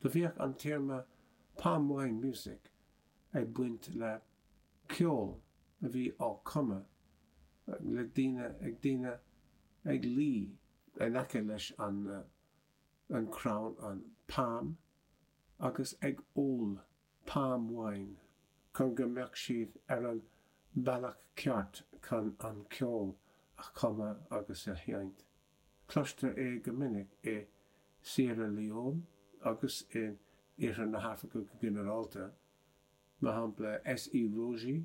Do bhíodh an téarma Palm Wine Music ag baint le ceol a bhí á cumadh le daoine ag daoine ag luí in aice leis an an crann an palm agus ag ól Palm Wine chun go mbeadh siad ar an bhealach ceart chun an ceol a chumadh agus a sheinnt. Cloistear é go minic i Siarra Leon agus in Iarthar na hAfraice go ginearálta, mar shampla SE Rogie,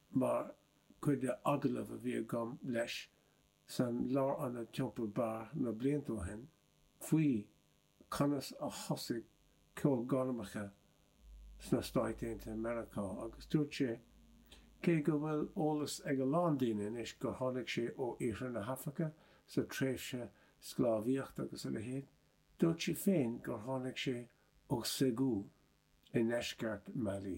Mar chuid de agallamh a bhí agam leis san lárionad Teampall Bar na blianta ó shin faoi conas a thosaigh ceol gormacha sna Stáit Aontaithe Meiriceá agus dúirt sé cé go bhfuil eolas ag a lán daoine anois gur tháinig sé ó Iarthar na hAfraice sa tréimhse sclábhaíocht agus a leithéid, dúirt sé féin gur tháinig sé ó Ségou i ndeisceart Mali.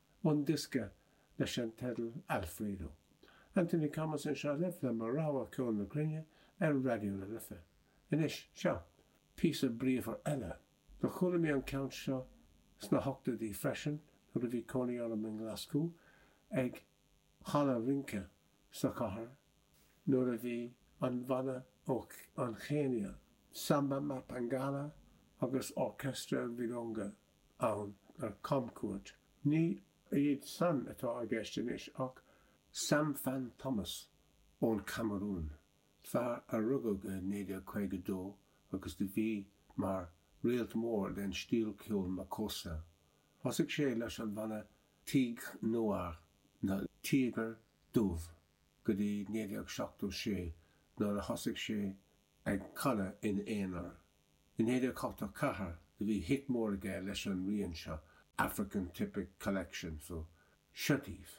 ón diosca leis an teideal Alfredo. Anthony Thomas anseo libh le mo rogha ceol na cruinne ar Raidió na Life. Anois, seo píosa bríomhar eile. Do chuala mé an ceann seo sna hochtóidí freisin nuair a bhí cónaí orm i nGlaschú ag halla rince sa chathair nuair a bhí an bhanna ó an Chéinia, Samba Mapangala agus Orchestre Virunga, ann ar camchuairt. Ní iad san atá i gceist anois ach. Sam Fan Thomas ón Camarún, fear a rugadh i 1952 agus do bhí mar réalt mór den stíl ceoil Makossa. Thosaigh sé leis an bhanna Tigres Noirs na Tíogair Dubh go dtí 1976 nuair a thosaigh sé ag canadh in aonar In Héileacaptar Chathair do bhí hit mór aige leis an rian seo, African Typic Collection, so shut it!